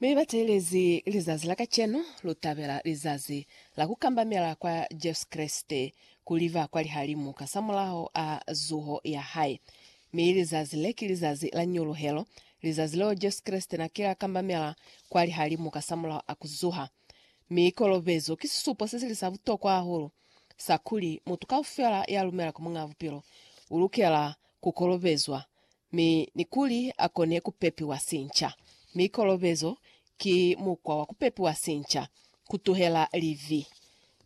Mi batelezi lizazi la kacenu, lutabela lizazi la kukambamela kwa Jesu Kreste kuli ba kwa lihalimu kasamulaho a zuho ya hae. Mi lizazi le ki lizazi la nyuluhelo, lizazi leo Jesu Kreste na kile a kambamela kwa lihalimu kasamulaho a kuzuha. Mi kolobezo ki sisupo sesili sa butokwa hahulu sa kuli mutu kaufela ya lumela ku Muñ'a Bupilo ulukela kukolobezwa mi ni kuli a kone ku pepiwa sinca. Mi kolobezo ki mukwa wa ku pepiwa sinca, ku tuhela libi,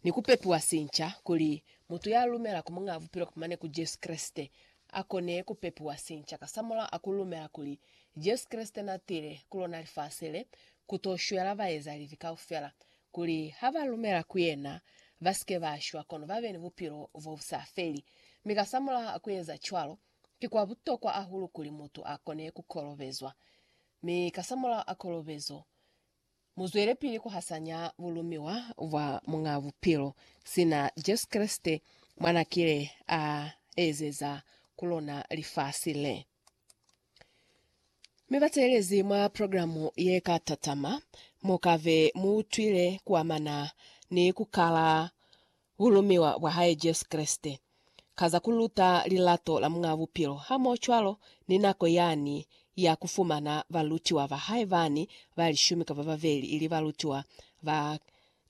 ni ku pepiwa sinca kuli mutu ya lumela ku Muñaa Bupilo kapa mane ku Jesu Kreste, a kone ku pepiwa sinca kasamulaho a ku lumela kuli Jesu Kreste na tile ku lona lifasi le ku to shwela baeza libi kaufela, kuli ha ba lumela ku yena, ba si ke ba shwa, kono ba be ni bupilo bo bu sa feli. Mi kasamulaho a ku eza cwalo, Ki kwa butokwa ahulu kuli mutu a kone ku kolobezwa, mi kasamulaho a kolobezo, mu zwelepili ku hasanya bulumiwa bwa Muñaa Bupilo, sina Jesu Kreste mwa na kile a ezeza ku lona lifasi le. Mi bateelezi mwa programu ye ka tatama, mu ka be mu utwile ku amana ni ku kala Ku lumiwa kwa hae Jesu Kreste, ka za ku luta lilato la Muñ'a Bupilo hamohocwalo ni nako yani ya ku fumana balutiwa ba hae bani ba lishumi kapa babeli ili balutiwa ba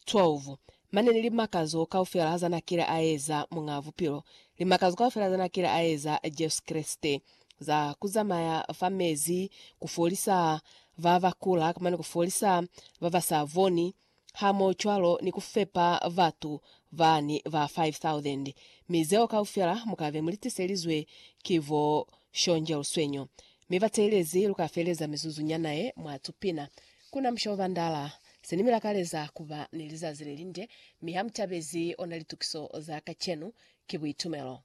12, mane ni limakazo kaufela za n'a kile a eza Muñ'a Bupilo, limakazo kaufela za n'a kile a eza Jesu Kreste, za ku zamaya fa mezi, ku folisa ba ba kula, mane ku folisa ba ba sa boni, hamoocwalo ni ku fepa batu bani ba 5,000, mi zeo kaufela mu ka be mu li tiselizwe ki bo shonje luswenyo. Mi bateelezi lu ka feleza mizuzu nyana ye mwa tupina. Ku na musha o bandala. Se ni mi lakaleza ku ba ni lizazi le linde, mi ha mu tabezi ona litukiso za kacenu. Ki buitumelo.